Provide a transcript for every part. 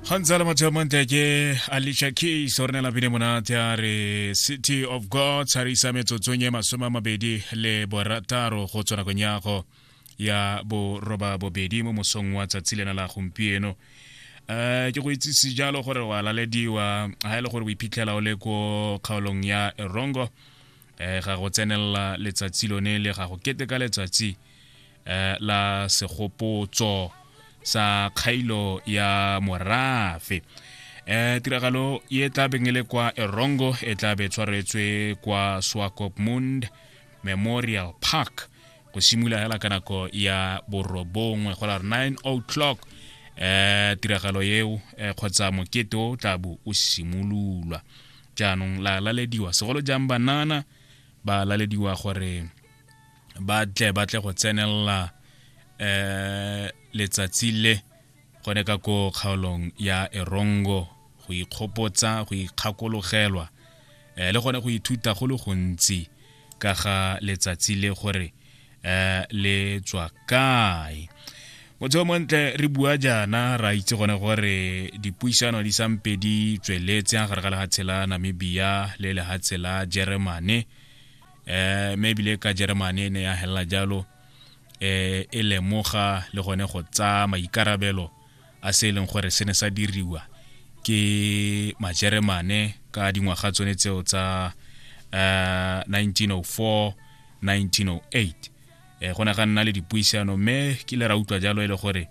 ga ntse a le matsheo mantle ke alicia keys o re ne lapile monate a re city of god sa re isa metsotsong e masome a mabedi le borataro go tswa nakong yago ya boroba bobedi mo mosong wa tsatsi lena la gompieno um ke go itsise jalo gore wa lalediwa ga e le gore o iphitlhela o le ko kgaolong ya erongo um ga go tsenelela letsatsi lone le ga go keteka letsatsi eh, la segopotso sa kgailo ya morafe eh tiragalo e tla beng e le kwa erongo e tla be tshwaretswe kwa swakopmund memorial park go simolola hela ka nako ya borobongwe go la 9 o'clock eh tiragalo eo eh, kgotsa mokete o tla bo o simololwa jaanong la lalediwa segolo jang banana ba lalediwa gore ba tle ba tle go tsenelela um letsatsi le gone ka ko kgaolong ya erongo go ikgopotsa go ikgakologelwa um le gone go ithuta go le gontsi ka ga letsatsi le gore um le tswa kae motseo montle re bua jaana ra itse gone gore dipuisano di sampe di tsweletse gare ga lehatshe la namibia le lehatshe la jeremane eh me bile ka Germany ne ya hella jalo eh e lemoga le gone go tsa maikarabelo a se e leng gore se ne sa diriwa ke majeremane ka dingwaga tsone tseo tsa uh, 1904 1908 eh go ne ga nna le dipuisano mme ke le ra utlwa jalo e le gore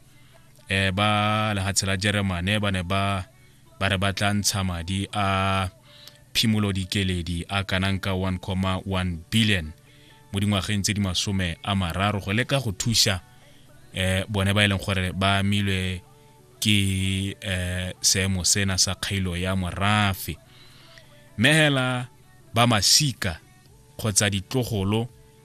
eh ba lehatshe la jeremane ba ne ba ba re ba tla ntsha madi a phimolo dikeledi a kanang ka 1,1 billion mo dingwageng tse di masome a mararo go leka go thusa eh bone ba e leng gore ba amilwe ke eh seemo sena sa kgailo ya morafe mehela ba masika kgotsa ditlogolo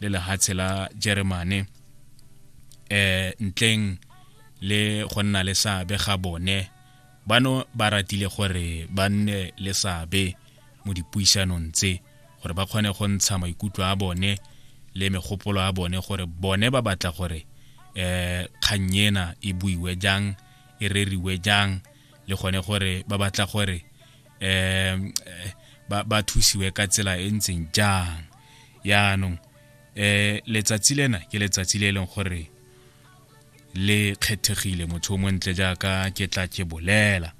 le lehatshe la jeremane eh ntleng le go nna le seabe ga bone bano ba ratile gore ba nne le seabe mo dipuisanong tse gore ba kgone go ntsha maikutlo a bone le megopolo a bone gore bone ba batla gore eh kgang ena e buiwe jang e reriwe jang le gone gore ba batla gore um ba, ba thusiwe ka tsela e ntseng jang yaanong um letsatsi lena ke letsatsi le e leng gore le kgethegile motho o montle jaaka ke tla ke bolela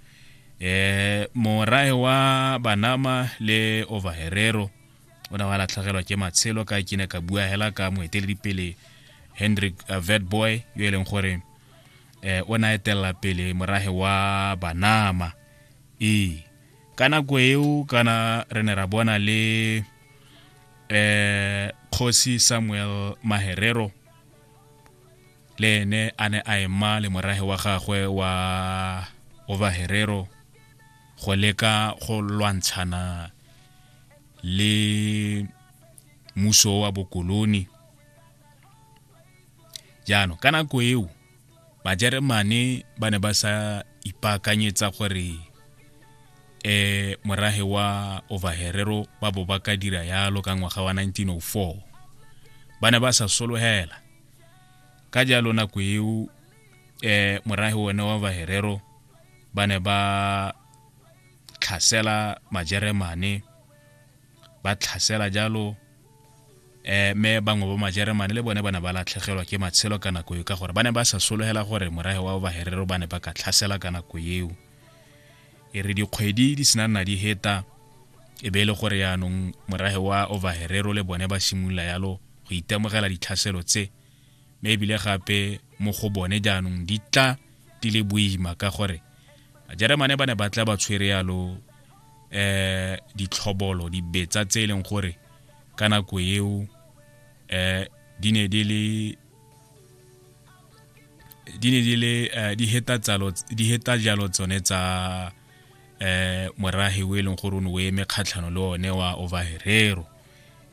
um morae wa banama le overherero o ne wa latlhegelwa ke matshelo ka ke ne ka bua hela ka moeteledipele hendrik uh, vetboy yo e leng gore um o na etelela pele morahe wa banama ee ka nako eo kana re ne ra bona le eh kgosi Samuel Maherero le ene a ne a ema le morage wa gagwe wa Ova Herero go leka go lwantshana le muso wa bokoloni jaanong ka nako eo bajeremane ba ne ba sa ipaakanyetsa gore eh morahe wa overherero ba bo ba ka dira yalo ka ngwaga wa 1904 ba ne ba sa sologela ka jalo nako eo eh morahe one wa overherero ba ne ba tlhasela majeremane ba tlhasela jalo eh me bangwe ba majeremane le bone ba ne ba latlhegelwa ke matshelo ka nako eo ka gore ba ne ba sa sologela gore morahe wa baherero ba ne ba ka tlhasela ka nako eo e re dikgwedi di sena nna di heta e be e le gore yaanong morahe wa overherero le bone ba simolola yalo go itemogela ditlhaselo tse mme ebile gape mo go bone jaanong di tla di le boima ka gore Jeremane ba ne ba tla ba tshwere yalo eh ditlhobolo dibetsa tse e leng gore ka nako eo eh di ne di le di ne di le eh, di heta tsalo di heta jalo tsone tsa eh morage o e leng gore o ne o eme kgatlhano le one wa overherero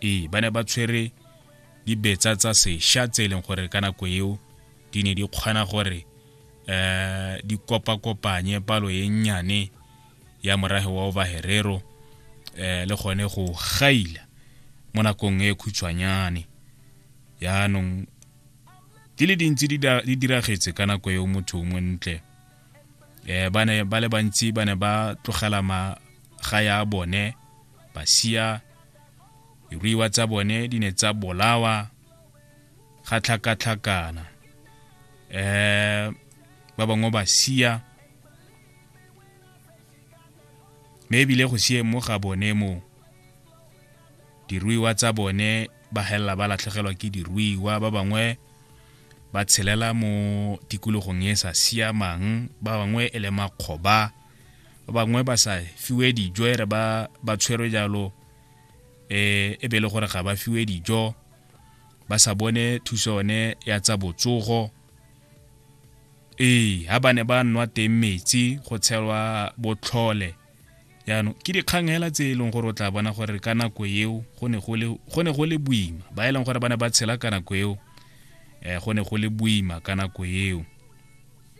ee ba ne ba tshwere dibetsa tsa sesha tse e leng gore ka nako eo di ne di kgona gore eh di kopa kopanye palo e nnyane ya morage wa obaherero eh le gone go gaila mo nakong e khutshwanyane yaanong di le dintsi di diragetse ka nako eo motho mo ntle eh ba ne ba le bantsi ba ne ba tlogela maga ya bone ba sia diruiwa tsa bone di ne tsa bolawa ga tlhakatlhakana eh ba bangwe ba sia me ebile go sie mo ga bone mo diruiwa tsa bone ba helela ba latlhegelwa ke diruiwa ba bangwe ba tshelela mo tikologong e sa siamang ba bangwe e le makgoba ba bangwe ba sa fiwe dijo ere ba ba tshwerwe jalo eh e be e le gore ga ba fiwe dijo ba sa bone thuso yone ya tsa botsogo ee ha ba ne ba nwa teng metsi go tshelwa botlhole jaanong ke dikgang hela tse e leng gore o tla bona gore ka nako eo go ne go le boima ba e leng gore ba ne ba tshela ka nako eo um go ne go le boima ka nako eo